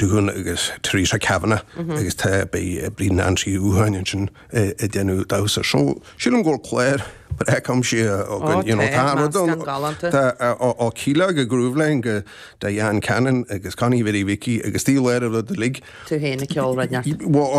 Doohan agus Theresa Kavanagh agus tá beidh Bríd Nancy U'Tháin ansin ag déanamh damhsa. So sílim go bhfuil clár breac aimsithe againn, you know, tá an rud ann. Tá ó Kíla go Grooveline go Diane Cannon agus Connie Mhary Mhicí agus Steve Laird a rud uilig. Tú féin ag ceol radneart.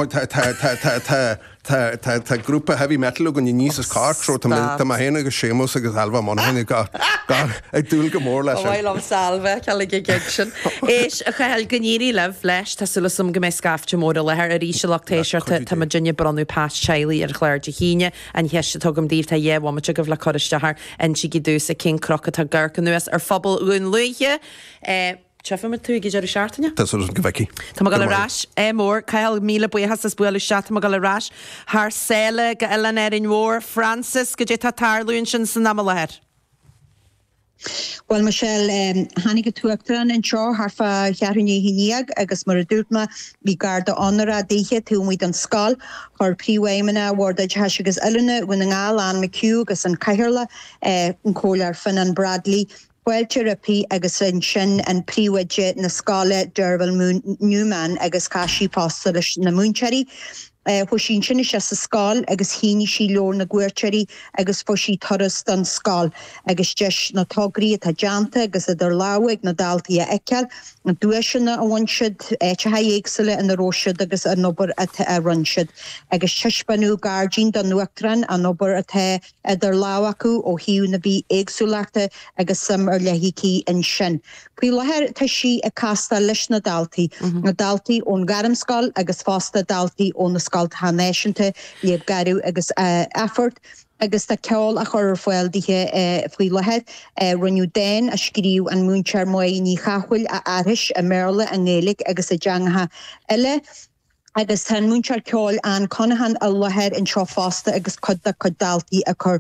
Tá tá tá tá tá. Tá grúpa heavy metal againn aníos as Cork so tá mé féin agus Séamus agus Ailbhe Monaghan ag dúil go mór leis an. Ba mhaith liom Ailbhe a fheiceáil ag an gig sin. Éist a Chathail go n-éirí libh leis, tá súil agam go mbeidh scaifte mór i láthair arís. A lucht éisteachta, tá muidinne ag bronnadh pas teaghlaigh ar chlár Dé hAoine, an cheist a thugaim daoibh tá dhá bhomaite agaibh le cur isteach air, insigí domhsa cén cnoc atá ag amharc anuas ar phobal Dhún Lúiche. Tchífimid tú ag deireadh seachtaine? Tá súil agam go bhfeicfidh. Tá mé ag dul ar ais. Ádh mór, Cathal, míle buíochas as bualadh isteach. Tá mé ag dul ar ais thar sáile go Oileán Árainn Mhór. Frances, goidé tá tarlú ansin san am i láthair? Bhuel, Michelle, tháinig an tUachtarán anseo thart fá cheathrú i ndiaidh a haon déag agus mar a dúirt mé, bhí garda onóra dithe taobh amuigh den scoil. Chuir Príomhfheidhmeannach Bhord Oideachais agus Oiliúna Dhún na nGall, Anne McHugh, agus an Cathaoirleach, an Comhairleoir Fionán Bradley, fáilte roimpi agus ansin an príomhoide na scoile Derval Newman agus chas sí fosta leis na múinteoirí. Chuaigh sí ansin isteach sa scoil agus shínigh sí leabhar na gcuairteoirí agus fuair sí turas don scoil agus deis na tograí atá déanta agus idir lámha ag na daltaí a fheiceáil, na duaiseanna a bhain siad, áiteacha éagsúla ina raibh siad agus an obair atá a rinn siad agus taispeánadh gairdín don Uachtarán an obair atá idir lámh acu ó thaobh na bithéagsúlachta agus suim ar leith aici ansin. Faoi láthair tá sí ag castáil leis na daltaí, na daltaí ón ghairmscoil agus fosta daltaí ó na scoltacha náisiúnta, Leadhb Gharbh agus Athphort, agus tá ceol á chur ar fáil dithe faoi láthair. Rinneadh dán a scríobh an múinteoir Maedhbh Ní Chathmhaoil a aithris i mBéarla, i nGaeilge agus i dteangacha eile. agus tá an múinteoir ceoil Ann Conaghan i láthair anseo fosta agus cuid dá cuid daltaí ag cur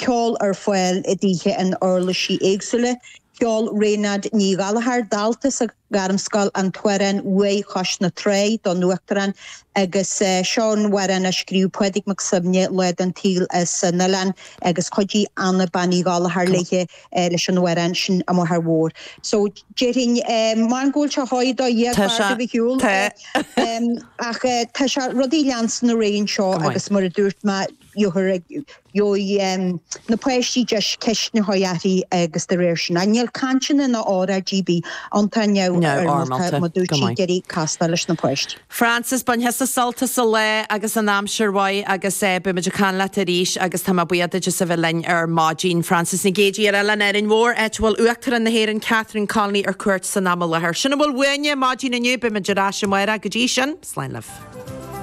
ceoil ar fáil dithe in uirlisí éagsúla. Cheol Raghnaid Ní Ghallchóir, dalta sa Ghairmscoil, an t-amhrán Uaigh Chois na Trá don Uachtarán agus seo an amhrán a scríobh Pádraig Mac Suibhne lá den tsaol as an oileán agus chuidigh Anna Bean Uí Ghallchóir léithe. leis an amhrán sin a máthair mhór. So déarfainn maith an ceol seo atá i do dhiaidh Tá sé, i bhfad ar shiúl tá. ach tá sé rudaí ag leanstan ar aghaidh anseo Go maith. agus mar a dúirt mé dheartháir ag gheobhaidh na páistí deis ceisteanna a chur uirthi agus de réir sin. An níl cainteanna ná óráid ar bith ann tá an-neamhfhoirmeálta, Neamhfhoirmeálta, go maith. mar dúirt sí ag iarraidh castáil leis na páistí. Frances, Bain thusa sult as an lá agus an aimsir mhaith agus eh beimid ag caint leat arís agus tá mé buíoch duit as a bheith linn ar maidin. Frances Nic Géidigh ar Oileán Árainn Mhór áit a bhfuil Uachtarán na hÉireann Catherine Connolly ar cuairt san am i láthair. Sin a bhfuil uainne maidin inniu, beimid ar ais amárach, go dtí sin, slán libh.